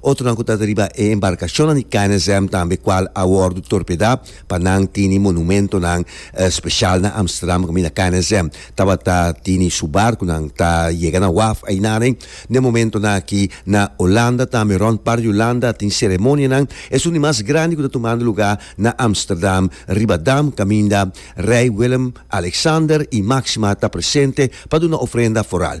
Otronan ku tabata riba e embarkashonnan di KNSM tambe kual a wòrdu torpedá pa nan tini monumentonan speshal na Amsterdam kaminda KNSM tabata tini su barkunan ta yega na waf ainaren den momentonan aki. Na Olanda tambe rònt par di Olanda tin seremonianan esun di mas grandi ku ta tumando lugá na Amsterdam riba dam kaminda Rei Willem Alexander i Maxima ta presente pa duna ofrenda foral.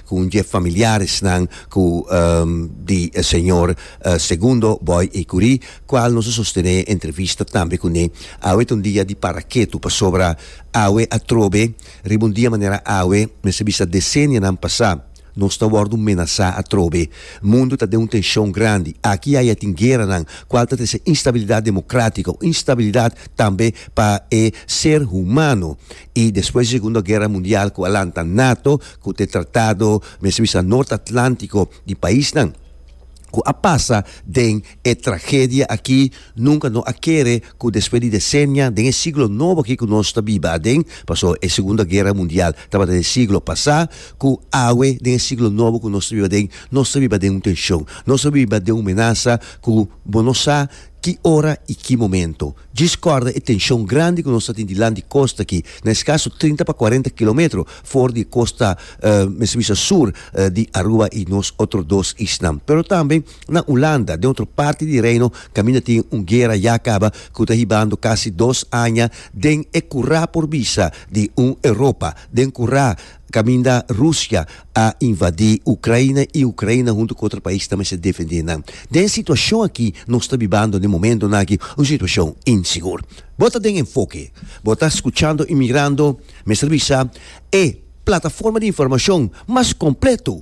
ku un dje familiaresnan ku di e señor Segundo Boy Ecury, kual nos a sostené e entrevista tambe kuné awe ta un dia di paraketu pasobra awe atrobe riba un dia manera awe mester bisa desenianan pasá nos ta wòrdu menasá atrobe. Mundu ta den un tenshon grandi. Aki i aya tin gueranan kual ta trese instabilidat demokratiko, instabilidat tambe pa e ser humano. I despues di Segundo Guera Mundial ku a lanta nato ku ta e tratado mester bisa Nort Atlantiko di paisnan ku a pasa den e tragedia aki nunka no a kere ku despues di desenia den e siglo nobo aki ku nos ta biba aden paso e Segundo Guera Mundial tabata den e siglo pasá ku awe den e siglo nobo ku nos ta biba aden nos ta biba den un tenshon nos ta biba den un menasa ku bo no sa ki ora i ki momento. Djis kòrda e tenshon grandi ku nos ta tin dilant di kosta aki, na e skaso trinta pa kuarenta kilometro for di e kosta, mester bisa sur, di Aruba i nos otro dos isnan. Pero tambe na Ulanda, den otro parti di Reino, kaminda tin un guera ya kaba ku ta hibando kasi dos aña den e kurá por bisa di un Europa, den kurá. Caminda Rusia a invadí Ucraina i Ucraina huntu cu otro pais ta mester defendé nan. Den e situacion aki nos ta bibando den momentonan aki, un situacion insigur. Bo ta den Enfoke. Bo ta scuchando y mirando, mester bisa, e plataforma di informacion mas completo.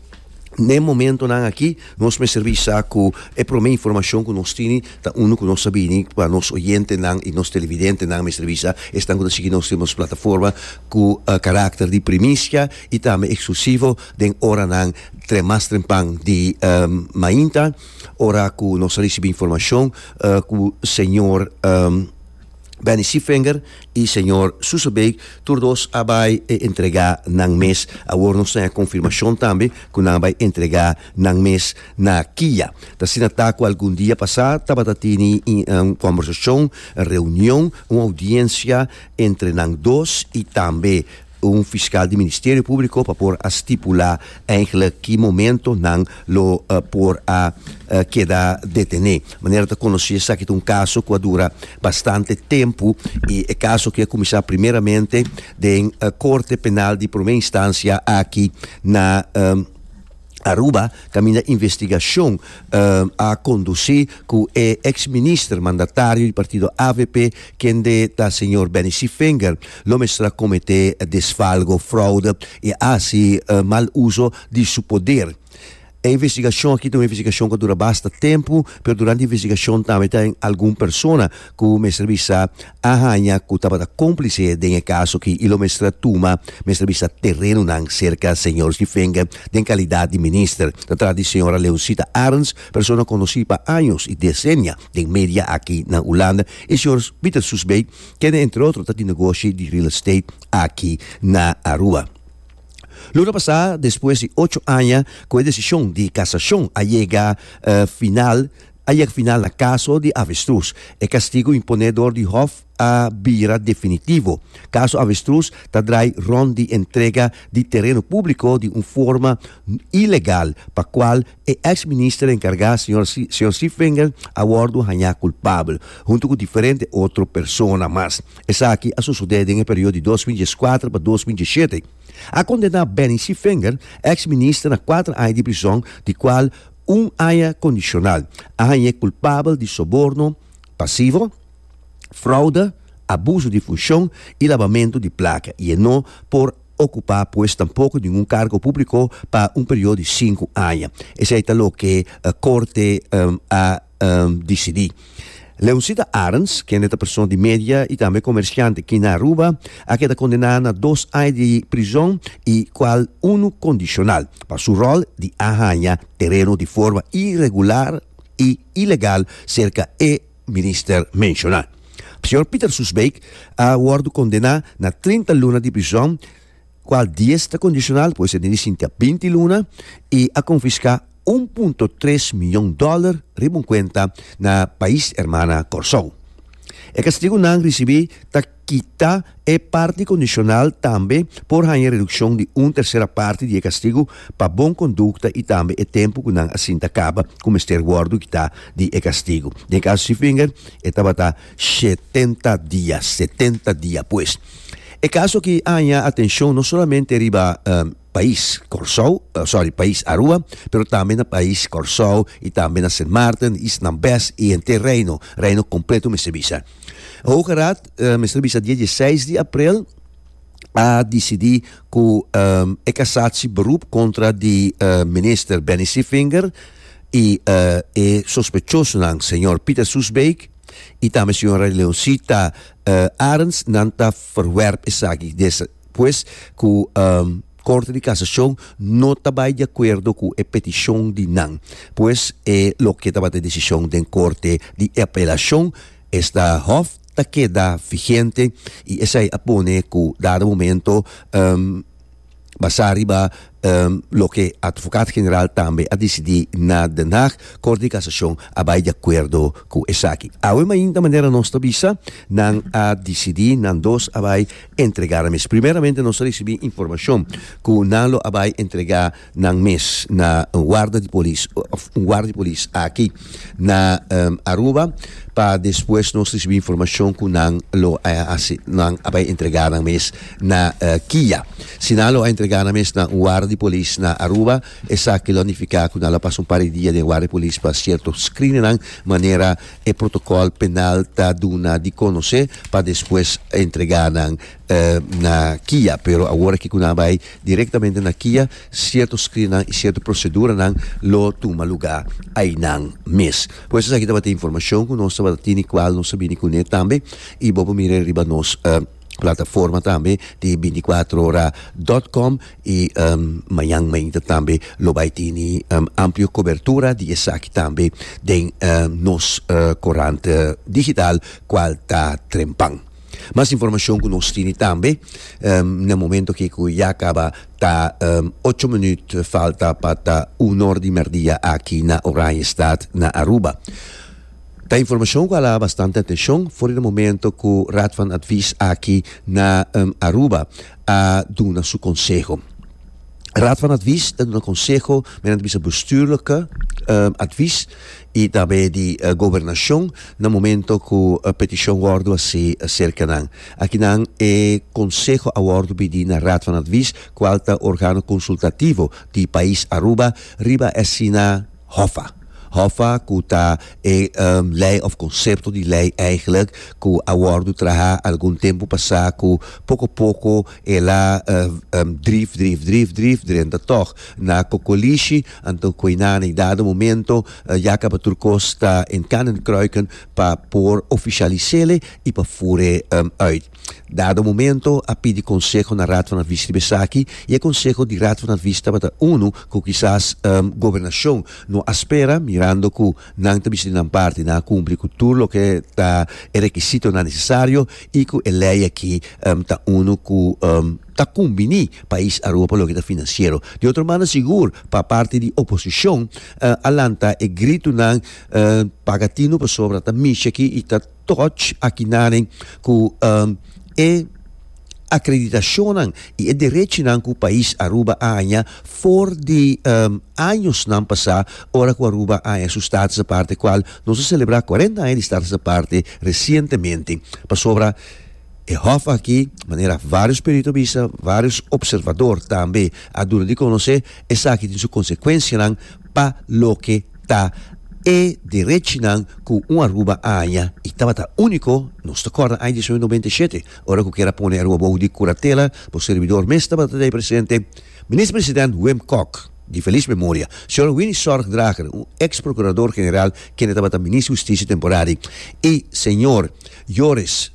N'e momentonan aki nos mester bisa cu e prome informacion cu nos tini ta unu cu nos a bini pa nos oyentenan y nos televidentenan mester bisa esnan cu ta sigui nos den nos plataforma cu caracter di primicia y tambe exclusivo den oranan tre mas trempan di mainta ora cu nos a ricibi informacion cu señor. Benny Schiefenger y Señor Soesebeek, tur dos a bay e entrega nan mes. Awor nos ta hen confirmacion tambe cu nan a bay entrega nan mes na Kia. Ta asina ta cu algun dia pasa tabata tini un conversacion, reunion, un audiencia entre nan dos y tambe un fiskal di Ministerio Públiko pa por a stipulá eigelik ki momento nan lo por a keda detené. Manera ta konosé esaki ta un kaso ku a dura bastante tempu i e kaso aki a kuminsá primeramente den Korte Penal di Promé Instansia aki na. Aruba, kaminda investigashon a kondusí ku e eks minister mandatario di partido avp, kende ta señor Benny Sievenger, lo mestra kometé desfalgo, fraude i a hasi mal uso di su poder. E investigashon aki ta un investigashon ku a dura basta tempu, pero durante e investigashon tambe ta algun persona ku mester bisa a haña cu tabata complice den e caso aki y lo mester a tuma mester a bisa terenonan cerca Señor Schiffenger den calidad di Minister, ta tras di Señora Leoncita Arends, persona conoci pa años y decennia den media aki na Hulanda, y Señor Pieter Soesbey, kende entre otro ta di negoshi di real estate aki na Aruba. Luna pasá, despues di ocho aña cu e decision di casacion a yega final, a yeg final na kaso di avestrus. E kastigu imponé dor di hòf a bira definitivo. Kaso avestrus ta drai rònt di entrega di tereno públiko di un forma ilegal pa kual e eks minister enkargá señor señor Seevinger a wòrdu hañá kulpabel huntu ku diferente otro persona mas. Esaki a sosodé den e periodo di dos mil dieskuater pa dos mil diesshete. A kondená Benny Seevinger, eks minister na kuater aña di prison di kual Un haña kondishonal a hañ'é kulpabel di soborno pasivo, fraude, abuso di funshon i labamentu di plaka i e no por okupá pues tampoko ningun kargo públiko pa un periodo di sinku haña. Esei ta loke Korte a. um, disidí. Leoncita Arends, kende ta persona di media i tambe komersiante ki na Aruba, a keda kondená na dos aña di prizòn i kual unu kondishonal, pa su ròl di a haña tereno di forma iregular i ilegal serka e minister menshoná. Señor Pieter Soesbeek a wòrdu kondená na trinta luna di prizòn kual dies ta kondisional por esei den di sinti a binti luna, i a konfiská un punto tres mion dòler riba un kuenta na Pais Hermana Kòrsou. E kastigunan risibí ta kita e parti kondisional tambe por haña redukshon di un tersera parti di e kastigu pa bon kondukta i tambe e tempu ku nan a sinta kaba ku mester wòrdu kita di e kastigu. Den e kaso Seefinger e tabata Shetenta dia, setenta dia pues. E kaso aki a haña atenshon no solamente riba pais Kòrsou, sòri, pais Arua, pero tambe na pais Kòrsou i tambe na Sint Maarten, East na Bes i henter Reino, Reino kompleto mester bisa. Hoge Raad, mester bisa dia dieseis di aprel, a disidí ku e kasatsi beroep kontra di minister Benny Sievinger i e sospechosonan, señor Pieter Soesbeek, y tambe señora Leoncita Arends nan ta verwerp esaki despues cu Corte di Casacion no ta bay de acuerdo cu e peticion di nan. Pues e loke tabata e decision den Corte di Apelacion esta hof ta keda vigente y esey a pone cu dado momento Basá riba loke Atvocat General tambe a disidí na Den Haag, Kort di Kasashon a bai di akuerdo ku esaki. Awe mainta manera nos ta bisa, nan a disidí nan dos a bai entregá nan mes. Primeramente nos a risibí informashon ku nan lo a bai entregá nan mes na un warda di polis òf un warda di polis aki. na Aruba pa despues nos risibi informashon ku nan lo a hasi nan a bai entregá nan mes na kia. Si nan lo a entregá nan mes na un ward di polis na Aruba esaki lo a nifiká ku nan lo a pasa un par di dia den ward di polis pa sierto screeningnan manera e protokòl penal ta duna di konosé pa despues entregá nan na kia pero awor aki ku nan a bai direktamente na kia sierto skrinnan i sierto proseduranan lo tuma lugá ainan mes pues esaki tabata informashon ku nos tabata tene kual nos a bini kuné tambe i bo por mira riba nos plataforma tambe di binti kuatro ora dòt kòm i mañan mainta tambe lo bai tene amplio kobertura di esaki tambe den nos korant digital kual ta Trempan. Mas informacion cu nos tini tambe na momento aki cu ya caba ta ocho minuut falta pa ta uno or di merdia aki na Oranjestad na Aruba. Ta informacion cu ala bastante atencion for di e momento cu Raad van Advies aki na Aruba a duna su conseho. Raad van Advies ta duna conseho, men a bisa bestuurlijke advies. y tambe di Gobernacion na momento cu e peticion wordo haci acerca nan. Akinan e conseho a wordo bidi na Raad van Advies, cual ta organo consultativo di pais Aruba riba asina hofa. Hofa cu ta e ley of concepto di ley eigenlijk cu a wordo traha algun tempo pasa cu poco poco el a drif, drif, drif, drif drenta tog na cocolishi Anto Koinanne i dado momento ya caba tur cos ta in kan en kruiken pa por oficialisele i pa fure uit. Dado momento a pidi conseho na Raad van Advies riba esaki i e conseho di Raad van Advies tabata unu cu kisas Gobernacion no a spera mirando cu nan ta bisa di nan parti, nan a cumpli cu tur loke ta e requisitonan necesario i cu e ley aki ta unu cu ta kumbiní pais Arua pa loke ta finansiero. Di otro mano sigur pa parti di oposishon a lanta e gritunan paga tinu pasobra ta misha aki i ta toch akinanen ku e akreditashonnan i e derechinan ku pais Aruba a haña for di añosnan pasá ora ku Aruba a haña su Status Aparte kual nos a selebrá kuarenta aña di Status Aparte resientemente pasobra E hòf aki, manera vários perito a bisa, vários opservador tambe a duna di konosé, esaki tin su konsekuensianan pa loke ta e derechinan ku un Aruba a haña i tabata úniko. Nos ta kòrda aña diecinueve noventa i shete, ora ku kera pone Aruba bohu di kuratela, bo serbidor mes tabata dei presente, Minister President Wim Kok, di felis memoria, señor Winnie Zorgdrager, un eks prokurador general kende tabata Minister Hustisia temporari, i señor. Joris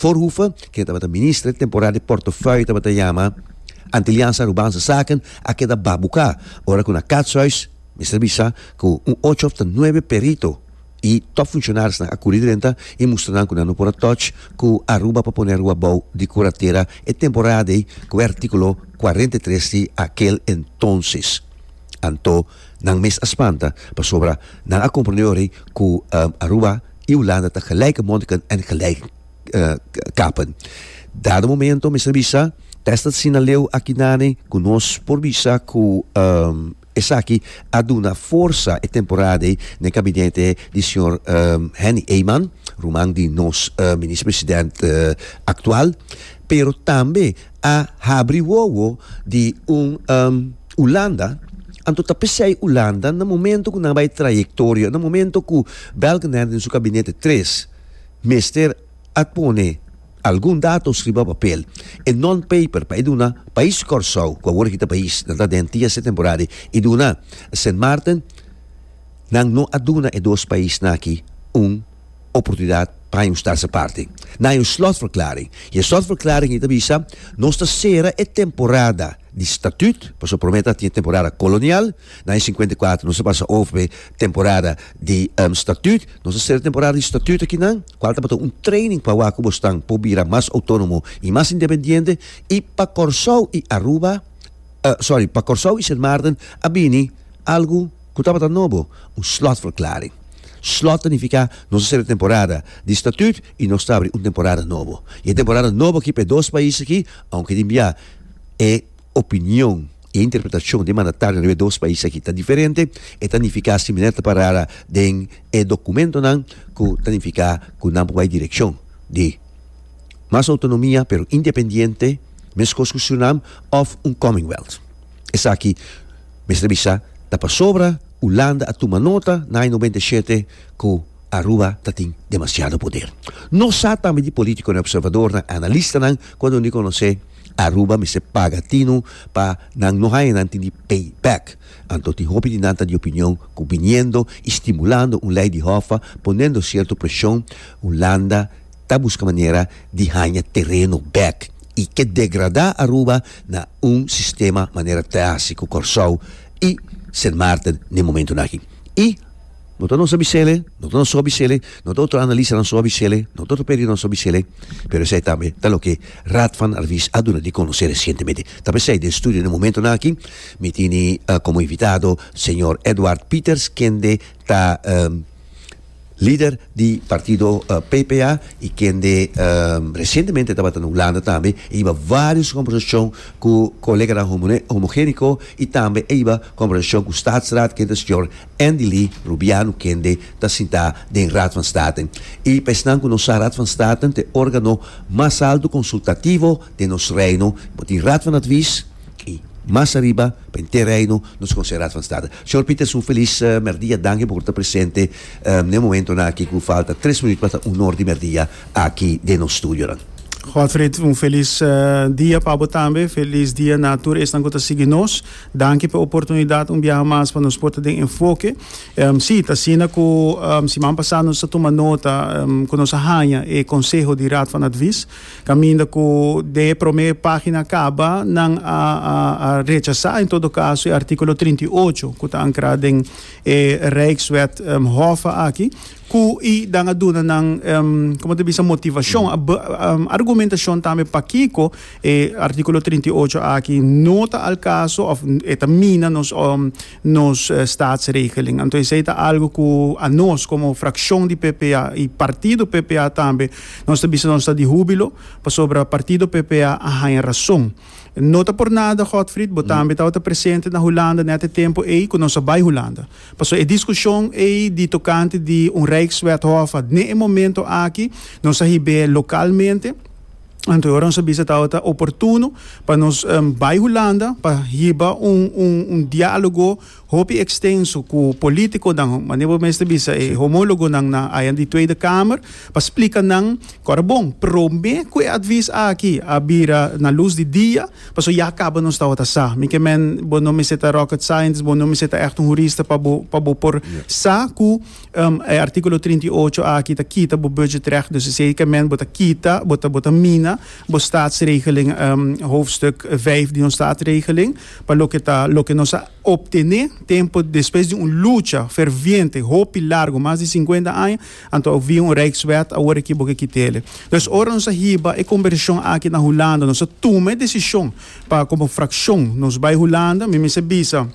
Voorhoeven, ken tabata minister temporari di portofuei tabata yama Antilliaans Arubaanse Saken, a keda babuka ora ku na Katshuis mester bisa ku un ocho of ta nuebe perito i top funshonarionan a kuri drenta i mustra nan ku nan no por a touch ku Aruba pa pone Aruba bou di kuratera e temporada ei ku e artikulo cuarenta y tres di akel entonces anto Nan mes a spanta pasobra nan a comprende awor ei cu Aruba y Hulanda ta gelijke mondiken en gelijk kapen. Dado momento mester bisa, test ta sina leu aki nani cu nos por bisa cu esaki a duna forsa e temporada ei na e gabinete di señor Henny Eyman, ruman di nos Minister President actual, pero tambe a habri wowo di un Hulanda, anto ta p'esei Hulanda na momento ku nan bai trayektorio, na momento ku Balkenende den su gabinete tres mester a pone algun datos riba papel, e non paper pa e duna pais Kòrsou, ku awor aki ta pais, nan ta den TSE temporadi, i duna Sint Maarten, nan no a duna e dos paisnan aki un. oportunidat pa haña un stadse parti. Nan haña un slotverklaring i e slotverklaring ei ta bisa, Nos ta sera e temporada di statüt, pasobra promé ta tin e temporada kolonial, na aña sinkuenta i kuater nos a pasa over pa e temporada di statüt, nos ta sera e temporada di statüt aki nan, kual tabata un training pa wak ku bo stan por bira mas outónomo i mas independiente, i pa Kòrsou i Aruba, sòri, pa Kòrsou i Sint Maarten a bini algu. Ku tabata nobo, un slotverklaring. Slot ta nifiká nos a sera temporada di statüt i nos ta abri un temporada nobo. I e temporada nobo aki pa e dos pais aki, ounke tin bia e opinion i e interpretashon di e mandatario riba e dos pais aki ta diferente, e ta nifiká similar ta parara den e dokumentonan ku ta nifiká ku nan por bai direkshon di mas outonomia pero independiente, meskos ku Surinam òf un commonwealth. Esaki. Mester bisa, ta pasobra Hulanda a tuma nota na aña noventa i shete ku Aruba ta tin demasiado poder. Nos sa tambe di politikonan, observadornan, analistanan ku a duna di konosé Aruba mester paga tinu pa nan no haña nan tin di pay back. Anto tin hopi di nan ta di opinion ku biniendo i stimulando un lei di hòf, ponendo sierto preshon, Hulanda, ta buska manera di haña tereno bèk i ke degradá Aruba na un sistema manera ta hasi ku Kòrsou i Sint Maarten n'e momentunan aki. I no ta nos abisele, no ta nos so abisele, no ta otro analistanan so abisele, no ta otro periodnan so abisele, pero esei tambe ta loke Raad van Advies a duna di konosé resientemente. Ta por esei den studio n'e momentunan aki mi tini komo invitado señor Edward Pieters kende ta. Lider di partido PPA y kende recientemente tabata na Hulanda tambe e hiba varios conversacion cu coleganan homogenico y tambe e hiba conversacion cu Staatsraad kende señor Andylee Rubiano kende ta sinta den Raad van State. Y pa esnan cu no sa Raad van State ta e organo mas alto consultativo den nos Reino. Bo tin Raad van Advies. I mas ariba pa e T-Reino nos con se Raad van State. Señor Pieter Su Feliz Merdia Danki por cu ta presente n'e momentonan aki cu falta tres minuut pa ta un hor di merdia aki den nos studionan. Godfried un feliz dia pa bo tambe. Feliz dia na tur esnan cu ta sigui nos. Danki p'e oportunidad un biaha mas pa nos por ta den enfoke. Si, ta asina cu siman pasá nos a tuma nota cu nos a haña e conseho di Raad van Advies. Caminda cu den e prome pagina caba, nan a a rechasa en todo caso e articulo trinta i ocho cu ta ancra den e Rijkswet Hoffe aki, cu y dan a duna nan, como ta bisa, motivacion, argumentacion tambe pakico e articulo trinta i ocho aki no ta al caso of e ta mina nos nos statsregeling. Anto esei ta algu ku anos komo frakshon di PPA i partido PPA tambe nos ta bisa nos ta di húbilo pasobra partido PPA a haña rason. No ta por nada Godfrid, bo tambe tabata presente na Hulanda nèt e tempu ei ku nos a bai Hulanda. Paso e diskushon ei di tokante di un rijkswethof a dne e momento aki nos a hib'é lokalmente, Anto e ora nos a bisa tabata oportuno pa nos bai Hulanda pa hiba un un un dialogo hopi extenso cu politiconan manera bo mester bisa e homologonan na ayan di Tweede Kamer pa splica nan cu ora bon prome cu e advies aki a bira na luz di dia pasobra ya caba nos tabata sa mi ke men bo no mester ta rocket scientist bo no mester ta echt un hurista pa bo pa bo por sa cu E artíkulo trinta i ocho aki ta kita bo budgetrecht, dus eseikament bo ta kita, bo ta bo ta mina bo Statsregeling, hoofdstuk vijf di nos Statsregeling, pa loke ta loke nos a optené tempu despues di un lucha ferviente hopi largu, mas di sinkuenta aña, anto a via un Rijkswet awor aki bo ke kit'ele. Dus ora nos a hiba e konvershon aki na Hulanda, nos a tuma e desishon pa komo frakshon nos bai Hulanda, mi mester bisa,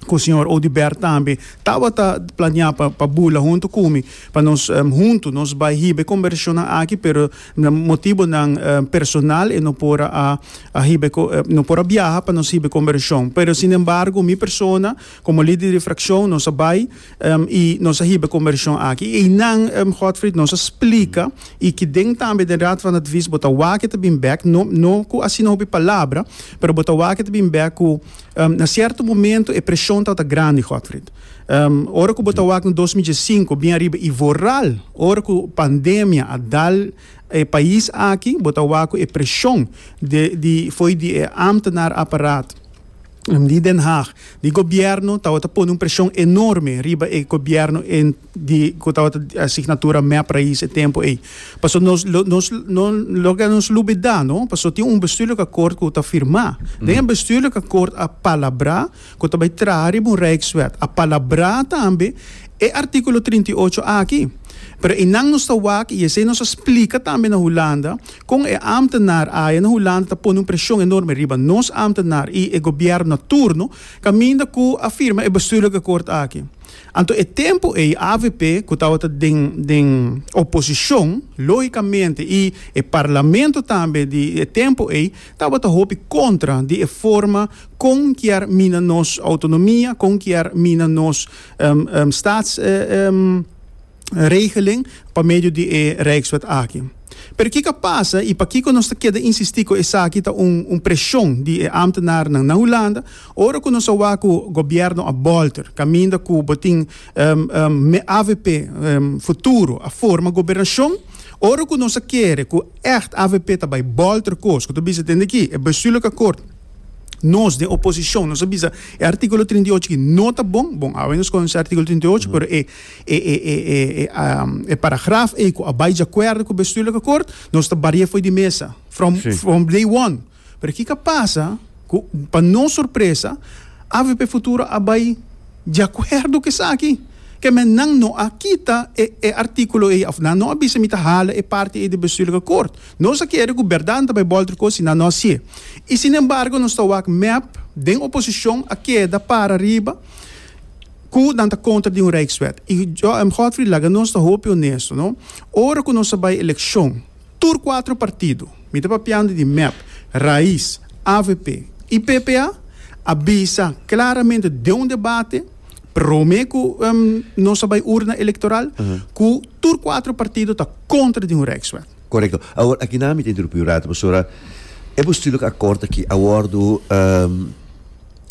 cu Señor Audibert tambe tabata planea pa, pa bula hunto cu mi, pa nos um, hunto nos bai hiba conversacionnan aki, pero na motibonan um, personal e no por a, a hiba, um, no por a biaha pa nos hiba conversacion. Pero sin embargo mi persona, como lider di fraccion, nos a bai um, y nos a hiba conversacion aki. Y eynan, um, Godfrid, nos a splica y ki den tambe den Raad van Advies bo ta wak e ta bin bek, no, no cu asina hopi palabra, pero bo ta wak e ta bin bek cu, Na sierto momento e presion tabata grandi, Godfrid. Ora cu bo ta wak na dos mil diesinco bin ariba y vooral ora cu pandemia a dal e pais aki, bo ta wak cu e presion de, di, fo'i di e ambtenaar apparaat di Den Haag, di gobierno tabata pone un presion enorme riba e gobierno en. di cu tabata di asignatura mep raiz e tempo ey. Paso nos lo nos no lo que nos lubida no paso tin un bestuurlijk akkoord cu ta firma. Den e bestuurlijk akkoord a palabra cu ta bay traha riba un rijkswet a palabra tambe e articulo trinta i ocho aki. Pero eynan nos ta wak y esey nos a splica tambe na Hulanda con e ambtenaar aya na Hulanda ta pone un presion enorme riba nos ambtenaar y e gobierno na turno caminda cu a firma e bestuurlijk akkoord aki. Anto e tempu ei avp cu tabata den den oposicion logicamente y e parlamento tambe di e tempu ei tabata hopi contra di e forma con kier mina nos autonomia, con kier mina nos staats. regeling pa medio di e Rijkswet aki. Pero kiko a pasa i pakiko nos ta keda insistí ku esaki ta un un preshon di e ámtenarnan na Hulanda ora ku nos a wak ku gobièrnu a bòlter kaminda ku bo tin avp futuro a forma gobernashon ora ku nos a kere ku ègt avp ta bai bòlter kos ku ta bisa den di aki e bestuurlike akkoord nos den oposishon nos a bisa e artíkulo trinta i ocho aki no ta bon bon awe nos konosé artíkulo trinta i ocho pero e E e e e e e paragraf ei ku a bai diakuerdo ku bestuurlijke akkoord, nos ta bari'é fo'i di mesa from Sí. from day one. Pero ki ka pasa ku pa nos sorpresa avp Futuro a bai diakuerdo ku esaki. Ke men nan no a kita e e artíkulo ei òf nan no a bisa mi ta hala e parti ei di bestuurlijke akkoord. Nos a kere ku bèrdat nan ta bai bòl triko si nan no hasié. I sinembargo nos ta wak mep den oposishon a keda para riba. ku nan ta kontra di un rijkswet. I Godfrey laga nos ta hopi onesto, no. Ora ku nos a bai elekshon, tur kuater partido, mi ta papiando di mep, Rais, avp i ppa, a bisa klaramente den un debate prome ku nos a bai urna elektoral, ku tur kuater partido ta kontra di un rijkswet. Korekto. Awor, aki nan mi ta interumpi un rato, pasobra e postulo ku akòrdo aki a wòrdu.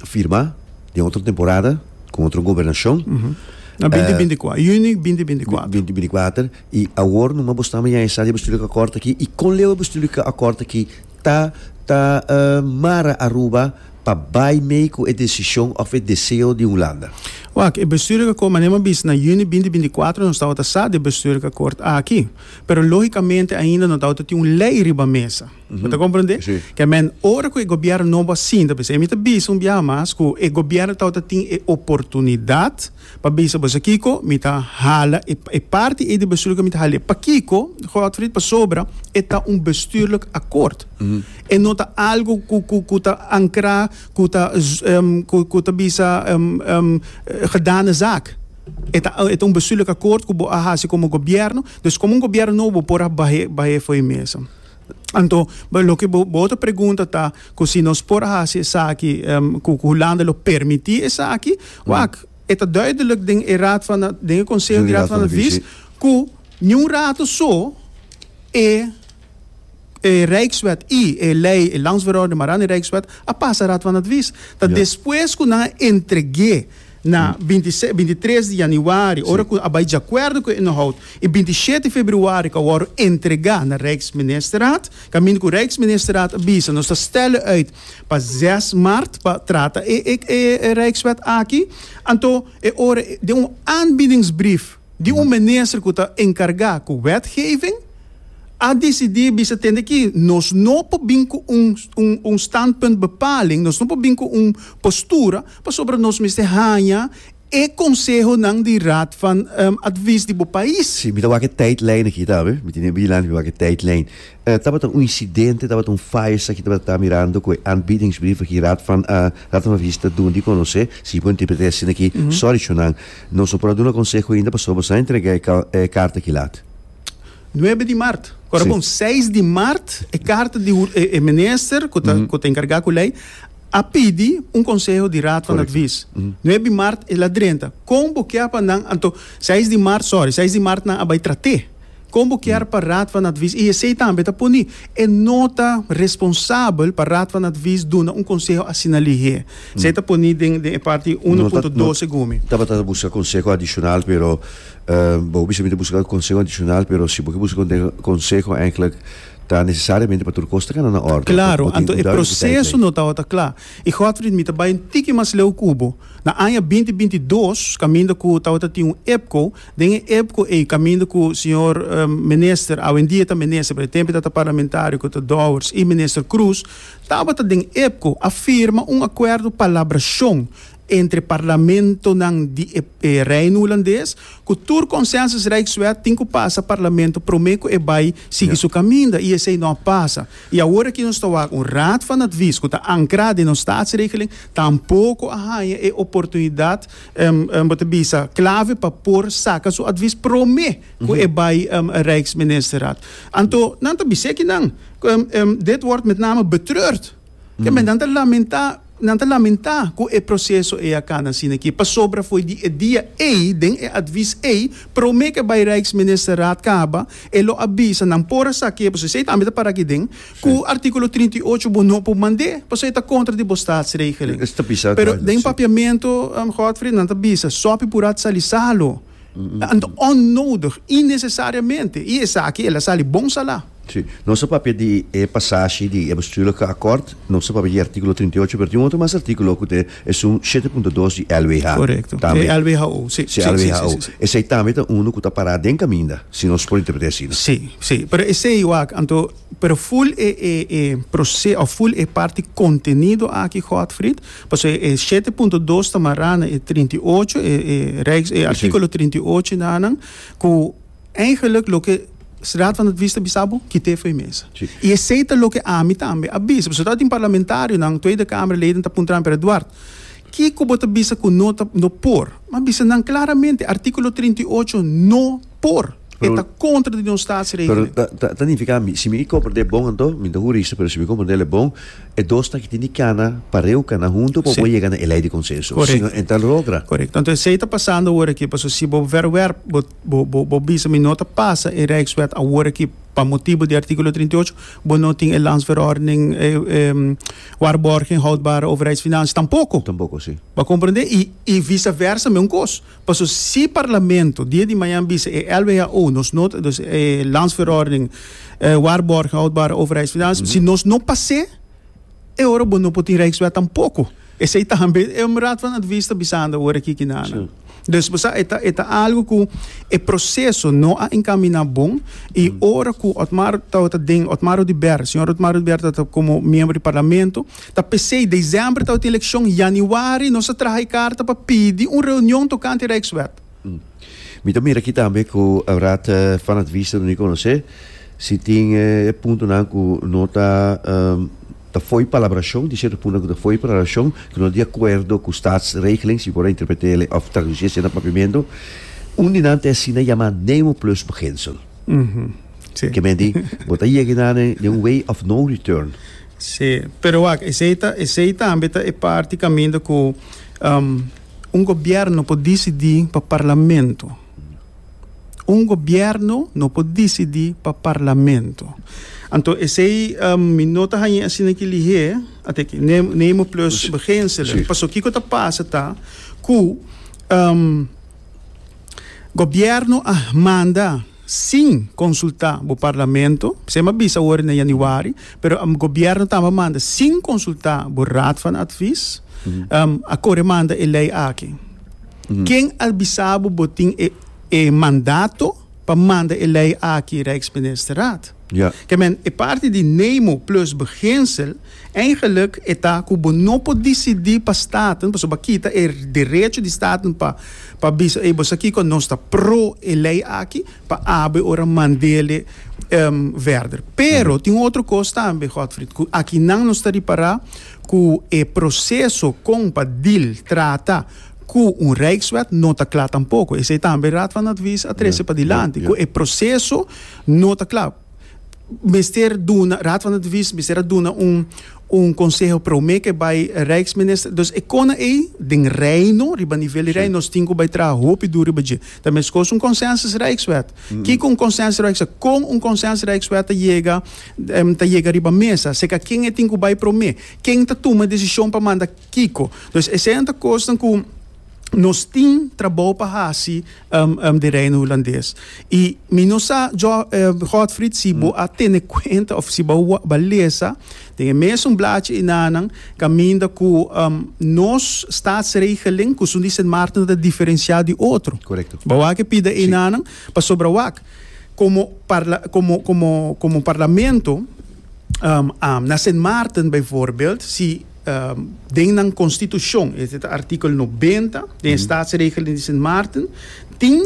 firma den otro temporada con otro gobernacion. Uh -huh. Na binti binti kuater, juni binti binti kuater. Binti binti kuater, i awor no ma bo stama ya e sa di bestuurlijke akkoord aki, i kon leu e bestuurlijke akkoord aki ta ta uh mara Aruba pa bai mee ku e desishon òf e deseo di Hulanda? Wak, e bestuurlijke akkoord, manera mi a bisa na juni binti binti kuater nos tabata sa di e bestuurlijke akkoord aki, pero lógikamente ainda no tabata tin un lei riba mesa. Bo ta komprendé? Ke men, ora ku e gobièrnu nobo a sinta bisa, e mi ta bisa un biaha mas ku e gobièrnu tabata tin e oportunidat pa bisa boso kiko, mi ta hala e parti ei di bestuur ku mi ta hal'é. Pakiko, Godfrid? Pasobra e ta un bestuurlik akkoord. E no ta algu ku ku ku ta ankrá, ku ta ku ta bisa gedane zaak. E ta e ta un bestuurlik akkoord ku bo a hasi komo gobièrnu. Dus komo un gobièrnu nobo por a bah'é bah'é fo'i mesa. Anto, loke bo bo ta pregunta ta ku si nos por a hasi esaki ku ku Hulanda lo permití esaki? Wak, e ta duidelik den e raad van den e konseho di Raad van Advies ku niun rato so e e Rijkswet i e lei, e Landsverordening, Marani Rijkswet, a pasa Raad van Advies. Ta despues ku nan a entreg'é. Na binti se, binti tres di januari, ora ku a bai djakuerdo ku e inhoud, i binti shete februari ku a wòrdu entregá na Rijksministerraad, kaminda ku Rijksministerraad a bisa. Nos ta stèl'e uit pa zes mart pa trata e e e Rijkswet aki. Anto e ora den un aanbiedingsbrief di un minister ku ta enkargá ku wetgeving, a desidí, a bisa tende aki nos no por bin ku un un un standpunt bepaling, nos no por bin ku un postura Pasobra nos mester haña e konsehonan di Raad van Advies di bo pais. Sí, mi ta wak e tijdlijn aki ta, mi tene abi dilanti, mi wak e tijdlijn. Tabata un insidente, tabata un faya sa ki tabata ta mirando ku e aanbiedingsbrief aki Raad van Raad van Advies ta duna di konosé, si bo interpret'é asina aki, sòri chonan, nos no por a duna konseho ainda pasobra nos a entregá e karta aki lat. Nuebe di mart, kòrda bon, seis di mart e karta di e minister ku ta enkargá ku lei, a pidi un konseho di Raad van Advies. Nuebe di mart el a drenta. Kon bo kier pa nan, anto, seis di mart, sorry, seis di mart nan a bai trat'é. Kon bo kier pa Raad van Advies, i esei tambe ta poni, e no ta responsabel pa Raad van Advies duna un konseho asina lihé. Esei ta poni den den e parti uno punto doce gumi. Tabata ta buska konseho adishonal, pero bo bisa mi ta buska konseho adishonal, pero si bo ke buska konseho, èk'lèk Ta nesesariamente pa tur kos ta kana na órden, pa Klaro, bo tin anto un e dòrmiti tèitlei. proseso no tabata kla. I Godfried, mi ta bai un tiki mas leu ku bo. Na aña binti binti dos, kaminda ku tabata tin un epco, den e epco ei, kaminda ku señor Minister, awendia ta Minister, pero e tempu ta ta Parlamentario, ku ta Dowers, i Minister Croes, tabata den epco, a firma un akuerdo palabrashon. entre parlamentonan di e Reino Hulandes ku tur Consensus Rijkswet tin ku pasa parlamento promé ku e bai sigui su kaminda i esei no a pasa. I awor aki nos ta wak un Raad van Advies ku ta ankrá den nos Staatsregeling tampoko a haña e oportunidat bo ta bisa klave pa por saka su advies promé ku e bai Rijksministerraad. Anto nan ta bis'é kinan dit wòrd met name betreurd. Ke men nan ta lamentá, nan ta lamentá ku e proseso ei a kanda asina aki, pasobra fo'i di e dia ei, den e advis ei, promé ke bai Rijksministerraad kaba, e lo a bisa, nan por a sa kebu, esei tambe ta para aki den, ku artíkulo trinta i ocho bo no por mand'é, pasobra e ta kontra di bo Staatsregeling. Pero den papiamentu, Godfrey, nan ta bisa, Sopi Purad Sali Salo. Anto onnodig, innesesariamente, i esaki el a sali bon salá. Sí. Nos ta papia di e pasashi di e bestuurlijke akkoord, nos ta papia di e artíkulo trinta i ocho, pero tin un otro mas artíkulo ku ta e esun shete punto dos di LWH. Korekto. Tambe. E LWHO, sí. Sí, Sí, sí, sí, LWHO. sí, sí. Esei tambe ta unu ku ta pará den kaminda, si nos por interpret'é asina. Sí, sí. Pero esei wak, anto Pero full e e e proce of full e parti contenido aki Godfrid, pasobra e shete punto dos ta mará na e trinta i ocho e e Rijks e artículo trinta i ocho nanan cu eigenlijk loke Raad van Advies ta bisa bo kit'é fo'i mesa. I esei ta loke ami tambe a bisa, pasobra ta tin parlamentarionan, Tweede Kamerleden ta puntra mi, pero Eduard, kico bo ta bisa cu no ta no por? M'a bisa nan claramente artículo trinta i ocho no Por, e ta kontra di nos statsregelen. Pero ta ta nifiká mi si mi i komprendé bon anto, mi no ta hurista, pero si mi komprendé lei bon, e dos taki tin di kana pareu, kana huntu pa bo por yega na e lei di konsenso. Korek. Si no e ta logra. Korek. Tantu esei ta pasando aworakí. Pasobra si bo verwerp, bo bo bo bo bisa mi no ta pasa e Rijkswet aworakí pa motibu di artíkulo trinta i ocho, bo no tin e Landsverordening, e e Waarborgen houdbare overheidsfinanciën tampoko. Tampoko, si. Bo a komprendé? I i visaversa men un kos. Paso si Parlamento dia di mañan bisa e LWHO nos no ta, dus e Landsverordening Waarborgen Houdbare Overheidsfinanciën, si nos no pas'é, e ora bo no por tin Rijkswet tampoko. Esei tambe e Raad van Advies ta bisando ora aki ki nan. Dus bo sa, e ta, e ta algu ku e proseso no a enkaminá bon, i ora ku Otmar tabata den, Otmar Oduber, señor Otmar Oduber tabata komo miembro di Parlamento, Ta p'esei, desèmber tabata tin elekshon, yanüari nos a traha e karta pa pidi un reunion tokante e Rijkswet. Mi ta mira akí tambe ku Raad van Advies ta duna e konosé si tin e puntonan ku no ta ta fo'i palabrashon, di sierto puntonan ku ta fo'i palabrashon, ku no ta di akuerdo ku Staatsregeling, si por a interpret'é òf tradusí esei na papiamentu. Un di nan ta e asina yamá Nemo Plus Beginsel. Si. Ke menti, bo ta yegi na den den un way of no return. Si, pero wak, esei ta, esei tambe ta e parti kaminda ku un gobièrnu por disidí pa parlamento. Un gobièrnu no por disidí pa parlamento. Anto esei mi no ta hañ'é asina ki lihé, a te ki, ne, Nemo plus Begenselen. Paso kiko ta pasa ta ku. Gobierno a manda sin consulta bo Parlamento, sem a bisa awor na Januari, pero Gobierno tambe a manda sin consulta bo Raad van Advies, um, a core manda e ley aki. Ken a bisa bo bo tin e, e mandato pa manda e ley aki Rijksministerraad? Ya. Ke men, e parti di nemo plus beginsel, eigenlik e ta ku bo no por disidí pa staten, pasobra bo a kita e derecho di staten pa pa bisa, ey, bo sa kiko, nos ta pro e lei aki pa abri ora a mandele verder. Pero tin un otro kos tambe, Godfrid, ku akinan nos ta ripará ku e proseso kon pa dil, trata, ku un rijkswet no ta kla tampoko. Esei tambe e Raad van Advies a trese padilanti, ku e proseso. No ta cla. Mester duna, Raad van Advies mester a duna un un conseho prome ke bai Rijksminister. Dus e kona ei den Reino, riba nivel di Reino, nos tin ku bai traha hopi duru riba dje. Ta meskos un consensus Rijkswet. Kiko un consensus Rijkswet? Kon un consensus Rijkswet ta yega ta yega riba mesa? Seka ken e tin ku bai prome? Ken ta tuma e desishon pa manda kiko? Dus eseinan ta kosnan ku. nos tin trabou pa hasi um, um, di Reino Hulandes. I mi no sa, jo, um, Godfried, si bo a tene cuenta of si bo a wa- ba lesa den e mes un blaadje i nanan caminda cu um, nos staatsregeling cusun di Sint Maarten ta diferencia di otro. Correcto. Bo a ke pida i Sí. nanan pasobra wak como parla, como como como parlamento um, um, na Sint Maarten bijvoorbeeld si Den nan konstitushon, esta ta artikel nobenta, den e Staatsregeling di Sint Maarten, tin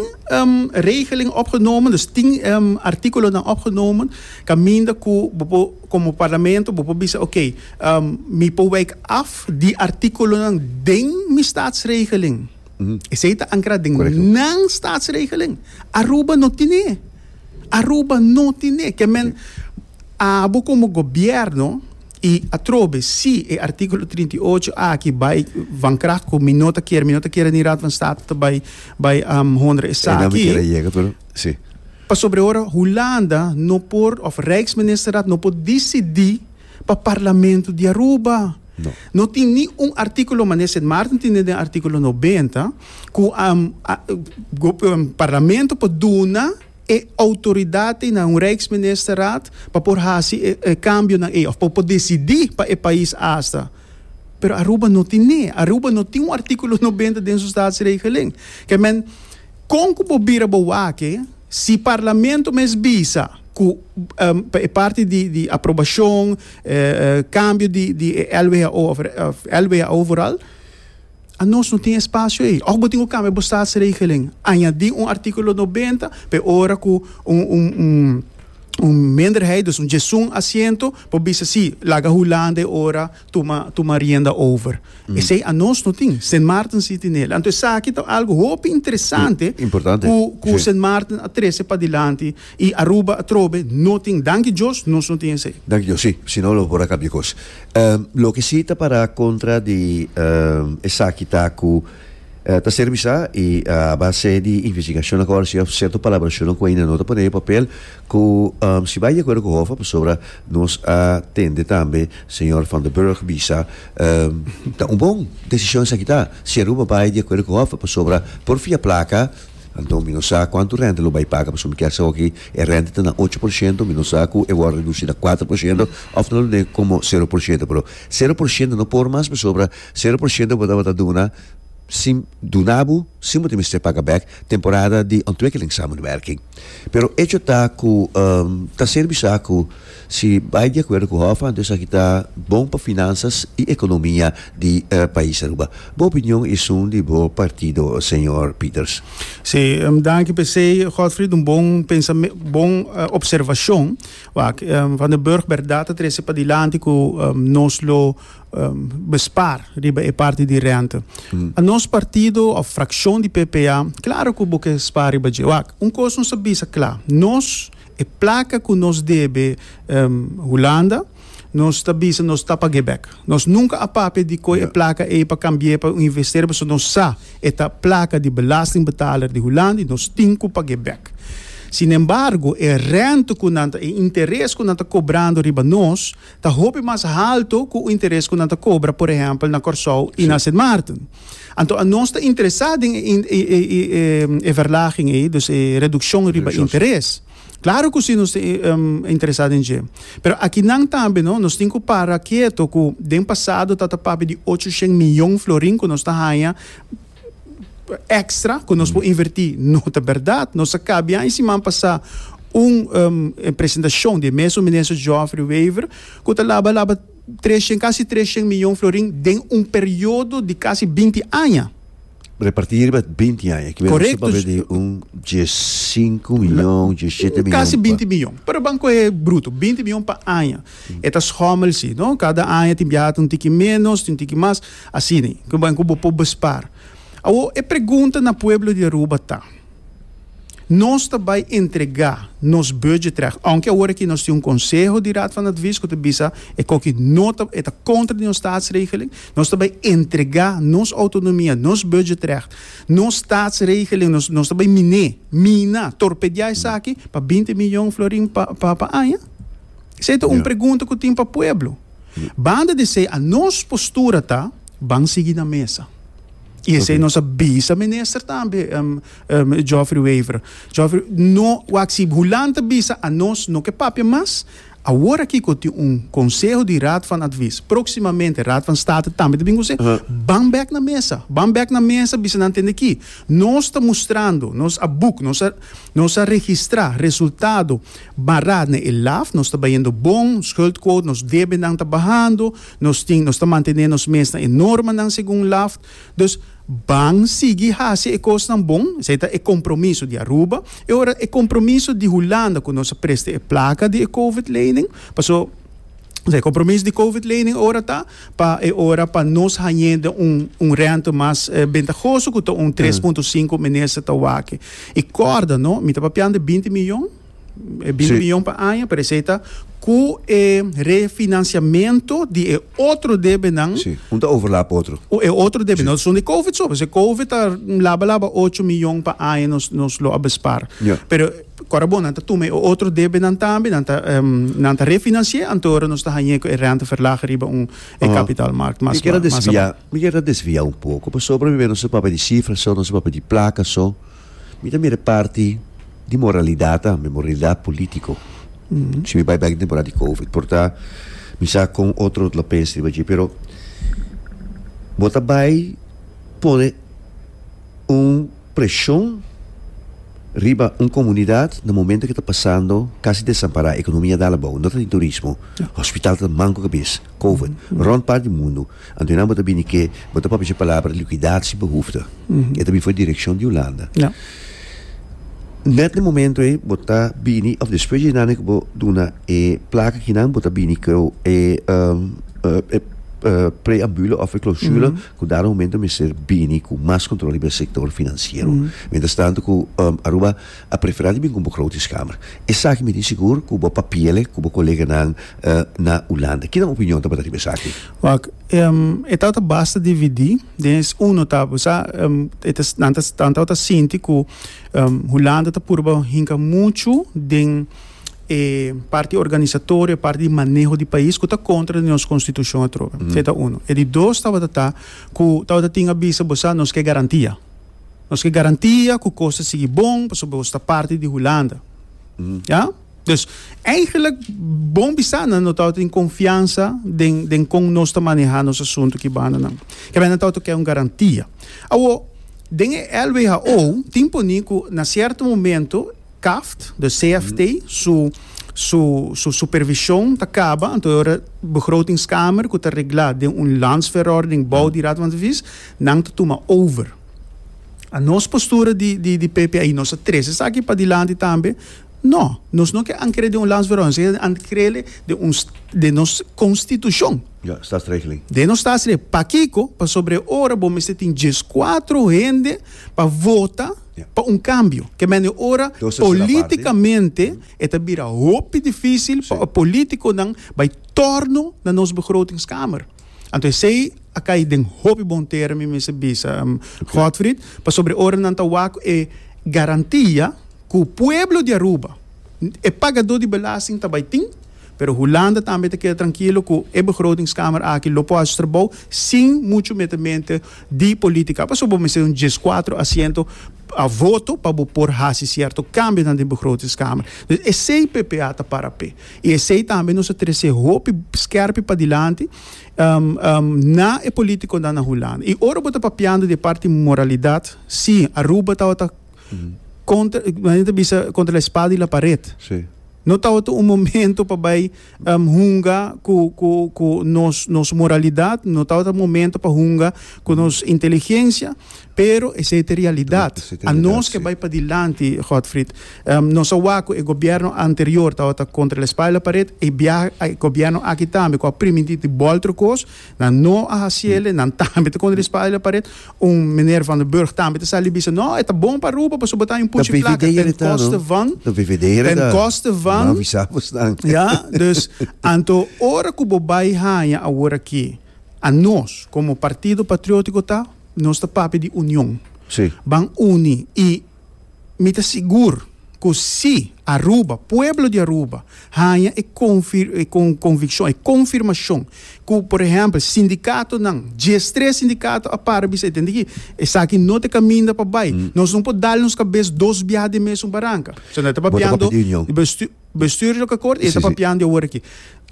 regeling opgenomen, dus tin artikulonan opgenomen, kaminda ku bo por, komo Parlamento, bo por bisa, oké, mi por weik af di artikulonan den mi Staatsregeling. Esei ta ankra den nan Staatsregeling. Aruba no tine e. Aruba no tine e. Ke men, abo komo gobièrnu, I atrobe, si e artíkulo trinta i ocho aki bai van krach ku mi no ta kere, mi no ta kere ni Raad van State ta bai bai honra esaki, pasobra ora Hulanda no por òf Rijksministerraad no por disidí pa Parlamento di Aruba. No tin ni un artíkulo manera Sint Maarten tin den artíkulo noventa ku Parlamento por duna. e outoridatnan na un Rijksministerraad pa por hasi e cambionan ei, of pa por decidi pa e pais asta. Pero Aruba no tin n'e. Aruba no tin un articulo noventa den su staatsregelen. Kei men, con cu bo bira bo wak-e si Parlamento mes bisa cu pa e parti di aprobacion, cambio di LWHO of LWHO vooral, Anos no tin espasio ei. Òf bo tin cu cambia bo statsregelen. Añadi un artículo noventa pa e ora cu un minderheid, dus un djesun asiento, por bisa si, laga Hulanda e ora tuma, tuma rienda over. Esei anos no tin. Sint Maarten si tinel. Anto esaki ta algo hopi interesante cu, cu Sint Maarten a trece padilanti. Y Aruba atrobe no tin danki Dios nos no tin esey. Danki Dios si, si no lo por a cambia cos. Loke si ta para contra di esaki ta cu ta ser bisa y a base di investigacion aco arisba cierto palabracionnan cu aina no ta pone e papel cu si bay di acuerdo cu Hoffa pasobra nos a tende tambe señor Van der Burg bisa ta un bon decision esaki ta si Aruba bay di acuerdo cu Hoffa pasobra por fia placa Anto mi no sa kuantu renta lo bai paga pasobra mi kier sa hopi e renta ta na ocho por shento, mi no sa ku e wòrdu redusí na kuater por shento òf ta lo tene komo sero por shento, pero sero por shento no por mas pasobra sero por shento bo tabata duna sin duna bo sin bo ta mester paga bèk temporada di ontwikkeling samenwerking. Pero echo ta ku ta ser bisa ku. Si bai di akuerdo ku Hof anto esaki ta bon pa finansas i ekonomia di pais Aruba. Bo opinion i esun di bo partido señor Peters. Sí, danki p'e esei Godfrid, un bon pensame, bon opservashon. Wak, Van den Burg bèrdat ta trese padilanti ku nos lo bespar riba e parti di rènta. Pa nos partido òf frakshon di PPA, klaru ku bo ke spar riba dje. Wak, un kos nos a bisa kla, nos E plaka ku nos debe Hulanda, nos ta bisa nos ta pag'é bèk. Nos nunka a papia di koi e plaka ei pa kambi'é pa un investero pasobra nos sa e ta plaka di belastingbetaler di Hulanda i nos tin ku pag'é bèk. Sinembargo, e rènta ku nan ta, e interes ku nan ta kobrando riba nos, ta hopi mas haltu ku interes ku nan ta kobra, por ehèmpel, na Kòrsou i na Sint Maarten. Anto anos ta interesá den e verlaging ei, dus e redukshon riba interes. Klaru ku si nos ta interesá den dje. Pero akinan tambe no, nos tin ku para keto ku den pasado ta ta papia di ocho shen miyon florin ku nos ta haña, extra cu nos por inverti no ta berdad nos a cabia y siman pasa un um, presentacion di meso minister Geoffrey Wever cu ta laba laba treshen casi treshen miljoen florin den un periodo di casi binti aña repartí riba 20 aña. Que Correcto. Correcto. de un 15 miljoen, 17 miljoen. Casi 20 miljoen. Pero banco es bruto, 20 miljoen per aña. Mm. Eta schommel si, no? Cada aña tin biahat un tiki menos, tin tiki mas. Asina ku bo ku bo por bespar. Awor e pregunta na pueblo di Aruba ta, Nos ta bai entregá nos budget terèg, ounke awor aki nos tin un konseho di Raad van Advies ku ta bisa e koki no ta e ta kontra di nos Staatsregeling, nos ta bai entregá nos outonomia, nos budget terèg, nos Staatsregeling, nos nos ta bai min'é, mina, torpedeá esaki pa binti miyon florin pa pa aña? Esei ta un pregunta ku tin pa pueblo. Banda di esei a nos postura ta ban sigui na mesa. I esei nos a bisa minister tambe, um, um, Geoffrey Wever. Geoffrey, no, wak si hulan ta bisa a nos no ke papia mas, awor aki ko tin un conseho di raad van advies, proximamente raad van state tambe ta bin conseho, uh -huh. ban bek na mesa, ban bek na mesa bisa nan tende ki nos ta mostrando, nos a boek, nos a, Nos a registrá resultado bará na e laf, nos ta bayendo bon, schuldquote, nos debenan ta bahando, nos tin nos ta mantené nos mes na e normanan segun laf. Dus ban sigui hasi e kosnan bon, esei ta e kompromiso di Aruba, e ora e kompromiso di Hulanda ku nos a presta e plaka di e covid-lening, paso. E compromis di covid lening ora ta pa e ora pa nos hañ'é den un un rente mas bentagoso cu ta un tres punto sinku minister ta wak-e. I corda no mi ta papian di binti mion, e binti mion pa aña pero esey ta cu e refinanciamento di e otro debenan, Sí, un ta overlap otro. e otro debe, no son di covid so, pasobra covid ta laba laba ocho mion pa aña nos nos lo a bespaar. Ja. Pero Ora bo nan ta tuma e otro debenan tambe, nan ta nan ta refinanci'é, anto ora nos ta hañ'é ku e renteverlaging riba un e kapitalmarkt mas ba, mas aba. Mi kier a desvia un poko, pasobra mi mira nos a papia di sifra so, nos a papia di plaka so, mi ta mira e parti di moralidat tambe, moralidat politiko, si mi bai bèk den temporada di covid. Por ta mi sa kon otro lo pensa riba dje, pero bo ta bai pone un. Preshon riba un komunidat na momento ke ta pasando kasi desampará, ekonomia dal abou, no ta tin turismo, hospital ta manco kabes, covid, rond part di mundu, anto e nan bo ta bini ke bo ta papia cu e palabra liquidad sin behoefte. E ta bin for e direccion di Hulanda. Net na e momento ei bo ta bini of despues di e nan ei cu bo duna e placa aki nan bo ta bini cu e preambule of e clausule Cu dado momento mester bini cu mas control riba e sector financiero. Mientras tanto cu Aruba a prefera di bin cu bo grote schamer. Esaki mi tin sigur cu bo papiele cu bo coleganan na Hulanda. Kinan opinion tabata riba esaki? Wak, e tawata basta dividi. Den es uno ta, bo sa, e ta, nan ta, nan tawata sinti cu Hulanda ta purba hinca muchu den. e parti organisatorio, e parti di maneho di pais ku ta kontra di nos konstitushon atrobe. Se ta uno. E di dos tabata ta ku tabata tin a bisa bo sa nos ke garantia. Nos ke garantia ku kos ta sigui bon pasobra bo sta parti di Hulanda. Ya? Dus eigenlijk bon bisa nan no tabata tin konfiansa den den kon nos ta maneha nos asuntu ki bandanan. Kebei nan tabata ke un garantia. Awo den e LWHO tin poni ku na sierto momento Caft, de CFT, su su su supervision ta caba, anto e ora Begrotingskamer, cu ta regla den un landsverordening bou di Raad van Advies, nan ta tuma over. A nos postura di di di PPI, nos a tres esaki padilanti tambe, no, nos no ke ankere den un landsverordening, nos ke ankrele den un den nos constitucion. Ja, statsregeling. Den nos statsregeling. Pakiko? Pasobra e ora bo mester tin dieskuatro hende pa vota. pa un kambio. Ke mende ora polítikamente e ta bira hopi difísil pa e polítikonan bai tòrno na nos Begrotingskamer. Anto esei a kai den hopi bon tera, mi mester bisa Godfried, pasobra ora nan ta wak ku e garantia ku pueblo di Aruba, e pagadó di belasting ta bai tin, pero Hulanda tambe ta keda trankilo ku e Begrotingskamer aki lo por haci su trabou sin muchu metemente di politica pasobra bo mester un diescuatro asiento a voto pa bo por haci cierto cambionan den Begrotingscamer. Dus esey ppa ta para p'e y esey tambe nos a trece hopi scerpi padilanti na e politiconan na Hulanda. Y ora bo ta papiando di e parti moralidad, si, Aruba tawata contra, men ta bisa contra la espada y la pared. No tawata un momento pa bay. hunga ku ku ku nos nos moralidat, no tabata momento pa hunga ku nos inteligensia, pero esei ta e realidat. Anos ke bai padilanti, Godfrid, nos a wak ku e gobièrnu anterior tabata kontra el espalda paret, e biaha e gobièrnu aki tambe ku a primintí di bòl trokos, Nan no a hasi ele, nan tambe ta kondre spada la paret. Un meneer Van den Burg tambe ta sali bisa, no, e ta bon pa Aruba pasobra ta un puchi plaka den koste van, den koste van, ya, dus anto ora ku bo bai haña awor aki, anos komo Partido Patriótiko ta, nos ta papia di union, ban uni i. Mi ta sigur ku si Aruba, pueblo di Aruba, haña e konvikshon, e konfirmashon ku por ehèmpel sindikatonan, diestres sindikato a para bisa, e tende ki esaki no ta kaminda pa bai, nos no por dal nos kabes dos biaha den mesun baranka. So nan ta papiando di bestu. Bestuur loke kort e ta papiando e ora ki.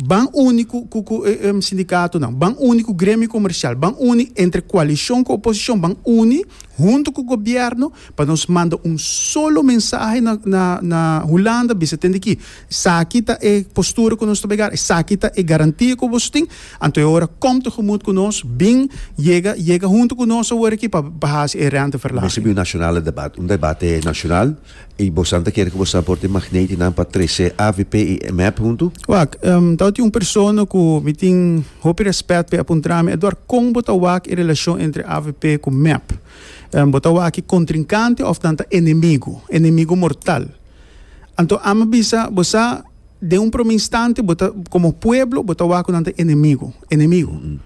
Ban uni ku ku ku e, e, sindikatonan, ban uni ku gremio komersial, ban uni entre koalishon ku oposishon, ban uni huntu ku gobièrnu pa nos manda un solo mensahe na na na Hulanda bisa tende ki esaki ta e postura ku nos ta bregá, esaki ta e garantia ku boso tin, anto e ora kòm tegemoet ku nos, bin yega yega huntu ku nos awor aki pa pa hasi e rènteverlaging. Mester bin un nashonale debat, un debate nashonal. I bosnan ta kere ku bosnan por tin magnetinan pa trese avp i mep huntu? Wak, Tau tin un persona ku mi tin hopi rèspèt p'e a puntra mi Edward kon bo ta wak e relashon entre avp ku mep? Bo ta wak e kontrinkante òf nan ta enemigu, enemigu mortal? Anto a mi bisa bo sa den un promé instante bo ta komo pueblo bo ta wak ku nan ta enemigu, enemigu.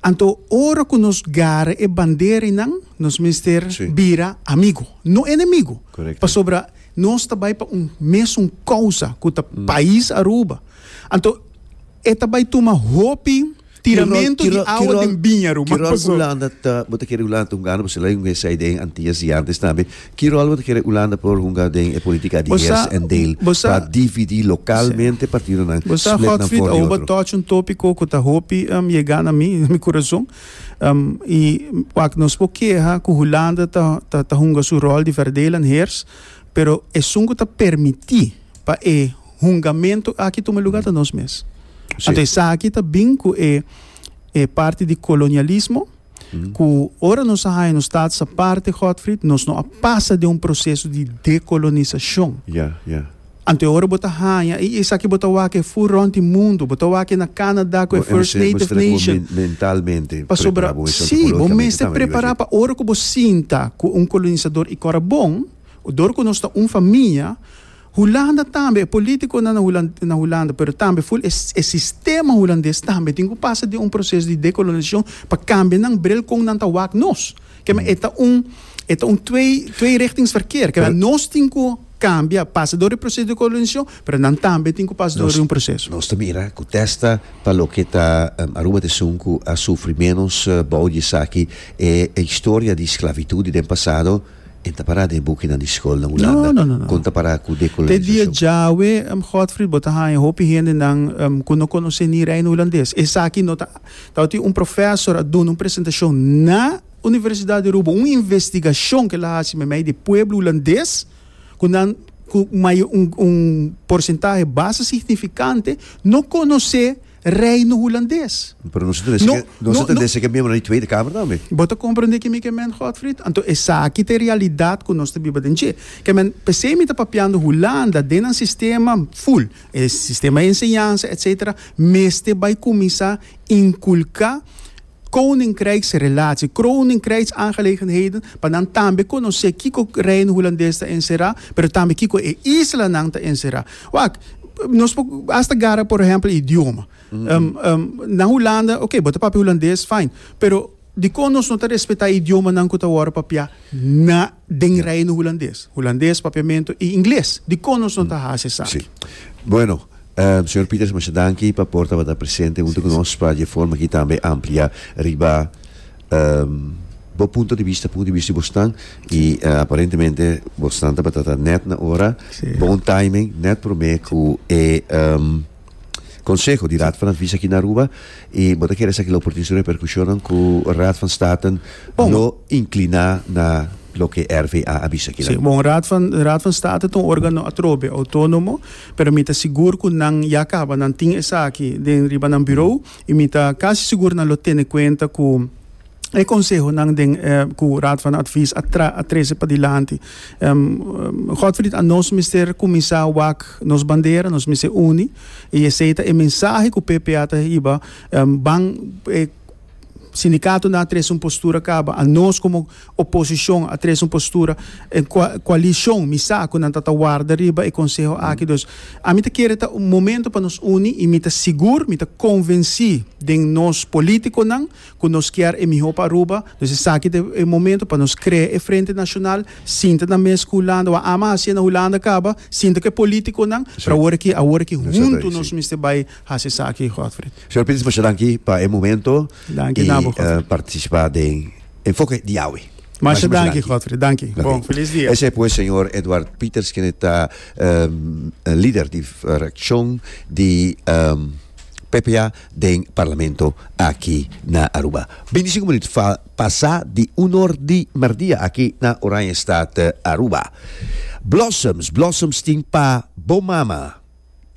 Anto ora ku nos gara e bandera einan, nos mester bira amigu, no enemigu. Pasobra nos ta bai pa un mesun kousa, ku ta pais Aruba. Anto e ta bai tuma hopi tiramentu di awa den biña, Aruba. Paso. Ki ròl Hulanda ta, bo ta kere Hulanda ta hunga? Bo ser la un USAID en Antillas di antes tambe. Ki ròl bo ta kere Ulanda por hunga den e politika di heers en deel pa dividí lokalmente partidonan, split nan for di otro? Bo sa, Godfried, awo bo touch un topiko ku ta hopi yegá na mi na mi kurason. I wak, nos por keha ku Hulanda ta hunga su ròl di verdeel en heers, pero esun ku ta permití pa e hungamentu aki tuma lugá ta nos mes. Anto esaki ta bin ku e parti di kolonialismo. ku ora nos a haña nos tatas aparte, Godfried, nos no a pasa den un proseso di dekolonisashon. Ya, ya. Anto e ora bo ta haña, i esaki bo ta wak e fur rònt di mundu, bo ta wak e na Canada ku e First Native Nation. Bo mester bo mentalmente prepará bo esaki, psikologikamente tambe. Sí, bo mester prepará pa ora ku bo sinta ku un kolonisador i kòrda bon, dor ku nos ta un famia. Hulanda tambe, e politiconan na Hulanda, pero tambe full e sistema Hulandes tambe tin cu pasa den un proces di decolonisacion pa cambia nan bril con nan ta wak nos. Kema e ta un e ta un twee twee richtings verkeer. Kema nos tin cu cambia, pasa door e proces di colonisacion, pero nan tambe tin cu pasa door e un proces. Nos ta mira cu testa pa loke ta Aruba ta esun cu a sufri menos bao di esaki e historia di sclavitud di den pasado. E ta pará den e bukinan di skolnan Hulanda? No, no, no. Kon ta pará ku dekolonizashon? Te dia djawe, Godfried, bo ta haña hopi hendenan ku no konosé ni Reino Hulandes. Esaki no ta. Tabatin un profèsor a duna un presentashon na Universidat di Aruba, un investigashon ku el a hasi meimei di e pueblo hulandes, ku nan ku un porcentahe basta signifikante no konosé. Reino Hulandes. Pero nos ta dese ke, nos ta dese ke miembro di Tweede Kamer tambe. Bo ta komprende kimi ke men Godfried? Anto esaki ta e realidat ku nos ta biba den dje. Ke men, p'esei mi ta papiando Hulanda den nan sistema ful, e sistema enseñansa, etsetera, mester bai kuminsá inkulká, Koninkrijksrelatie. Koninkrijksaangelegenheden, pa nan tambe konosé kiko Reino Hulandes ta enserá, pero tambe kiko e islanan ta enserá. Wak, nos por hasta gara, por ehèmpel, idioma. na Hulanda, oké, bo ta papia Hulandes, fain, pero dikon nos no ta respetá idiomanan ku ta wòrdu papiá na den Reino Hulandes, Hulandes papiamento y Ingles. Dicon nos no ta haci esaki? Bueno, Señor Pieters masha danki pa por tabata presente hunto cu nos pa dje forma aki tambe amplia riba bo punto di bista, punto di bista di bosnan y aparentemente bosnan tabata ta net na ora, bon timing, net prome cu e. Konseho di Raad van Advies aki na Aruba i bo ta kere sa kila oportuniso reperkushonnan ku Raad van Staten lo inkliná na loke RVA a bisa kila. Sí, bon, Raad van, Raad van State ta un órgano atrobe, outónomo, pero mi ta sigur ku nan ya kaba, nan tin esaki den riba nan birou i mi ta kasi sigur nan lo tene kuenta ku, E konsehonan den ku Raad van Advies a tra a trese padilanti. Godfried, a nos mester kuminsá wak nos bandera, nos mester uni i esei ta e mensahe ku PPA ta hiba ban e sindikatonan a trese un postura kaba, a nos komo oposishon a trese un postura, e koalishon mi sa ku nan ta ta warda riba e konseho aki. Dus ami ta kere ta un momento pa nos uni i mi ta sigur, mi ta konvensí den nos polítikonan Cu nos kier e miho pa Aruba, nos esaki ta e momento pa nos crea e Frente Nacional, sinta na mes cu Hulanda, wou a ama haci'e na Hulanda caba, sinta cu e politiconan, pero awor aki, awor aki hunto nos mester bay haci esaki, Godfrey. Señor Pins, masha danki pa e momento y participa den Enfoke di Yahweh. Masha danki, Godfrey. Danki. Bon, feliz dia. Esey pues señor Edward Pieters, kende ta lider di fraccion di PPA. den Parlamento aki na Aruba. Bintisinko minuut fa pasa di unor di merdia aki na Oranjestad Aruba. Blossoms, blossoms tin pa bo mama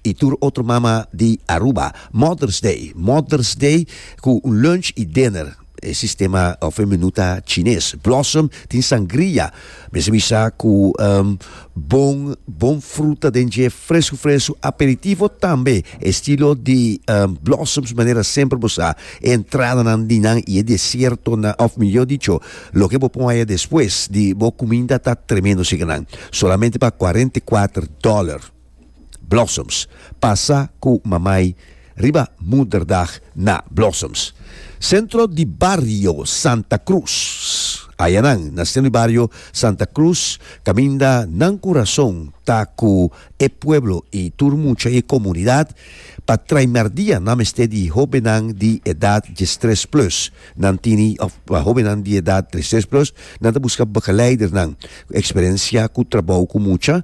i tur otro mama di Aruba. Mother's Day, Mother's Day ku un lunch i dinner. E sistema of e menu ta chines. Blossom tin sangria, mesemi sa ku um, bon bon fruta den dje fresku fresku, aperitivo tambe estilo di um, blossoms manera semper bo sa e entradanan di nan i e desiertonan of mihor dicho loke bo pon aya despues di bo kuminda ta tremendo si ke nan solamente pa cuarenta y cuatro dòler. Blossoms. Pasa ku Mamay riba Moederdag na Blossoms. Sentro di Bario Santa Cruz. Aya nan, na sentro di Bario Santa Cruz, kaminda nan ku rason ta ku e pueblo i tur mucha i e komunidat pa traimer dia nan mester di hobennan di edat diestres plus. Nan tini, òf, pa hobennan di edat diestres plus, nan ta buska begeleidernan ku eksperensia ku trabou ku mucha.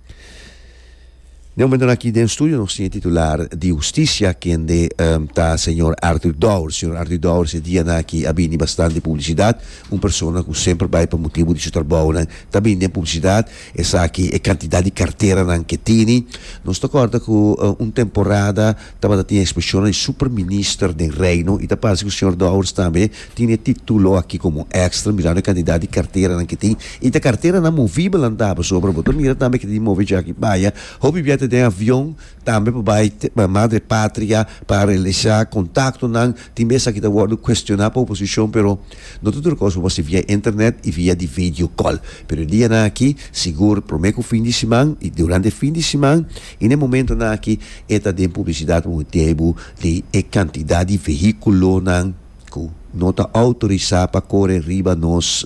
Den momentonan aki den studio nos tin e titular di Husticia kende ta señor Arthur Dowers. Señor Arthur Dowers e dianan aki a bini bastante publicidad. Un persona cu semper bay pa motibu di su trabounan ta bini den publicidad. Esaki e cantidad di carteranan ke tini. Nos ta corda cu un temporada Tabata tin exposicionnan di Superminister den Reino y ta parse cu Señor Dowers tambe tin e titulo aki como extra mirando e cantidad di carteranan que tin y ta carteranan movibelan ta pasobra bo ta mira tambe que ta di move djaki baya hopi bia ta den avion tambe pa bay Madre Patria pa realiza contactonan tin be esaki ta wordo cuestiona pa oposicion pero No ta tur kos bo hasi via internet i via di vedio kòl. Pero e dianan aki, sigur promé ku fin di siman i durante e fin di siman i na e momentonan aki e ta den publisidat bo mester bai bo di e kantidat di vehíkulonan ku no ta outorisá pa kore riba nos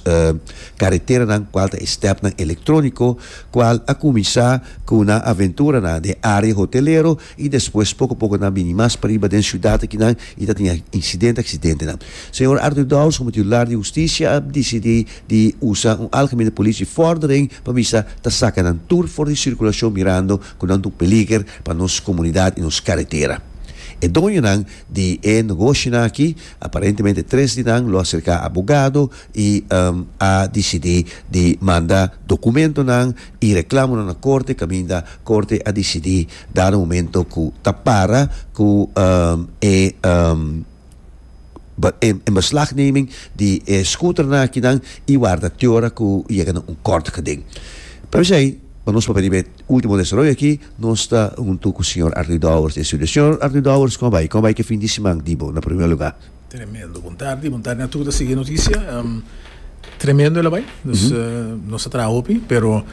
kareteranan kual ta e stèpnan elektróniko kual a kuminsá ku nan aventuranan den área hotelero I despues poko poko nan a bini mas pariba den siudat akinan i ta tin insidente aksidentenan. Señor Arthur Dowles komo titular di hustisia a disidí di usa un algemene politie vordering pa bisa ta saka nan tur for di sirkulashon mirando ku nan ta un peliger pa nos komunidat i nos karetera. E doñonan di e nogoshinan aki, aparentemente tres di nan lo aserká abogado i a disidí di manda dokumentonan i reklamonan na korte kaminda korte a disidí Dar un momento cu ta para cu e inbeslagneming di e scooternan akinan y warda te ora cu yega na un kort gedenk. P'esey, pa nos papia riba e ultimo desaroyo aki, nos ta hunto cu señor Arthur Dowers. Señor Arthur Dowers, como a bay? Como a bay cu e fin di siman di bo, na prome lugar? Tremendo, bon tardi, bon tardi na tur ta sigui e notisia. Um, tremendo e labai, dus mm -hmm. uh, nos a traha hopi, pero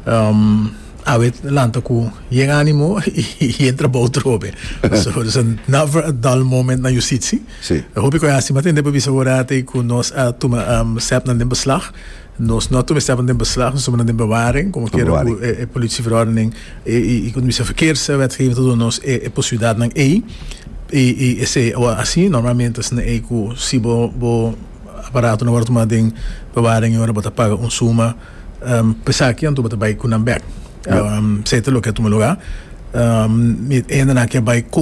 um, awe lanta ku yen animo i entra bou trobe. so, dus a never a dull moment na justitie. Sí. Hopi ko hasi, ma tende pa bisa ora te ku nos a tuma um, sep na den beslag. Nos no ta mester pon den beslag, nos ta pon den bewaring, como quiera cu e politieverordening y como ta bisa verkeerswetgeving ta duna nos e posibilidadnan ey. Y esey awa asi normalmente esnan ey cu si bo bo aparato no word tuma den bewaring y ora bo ta paga un suma pa esaki anto bo ta bay cu nan bek. Sey ta loke a tuma lugar. Mi hende nan a kier bay.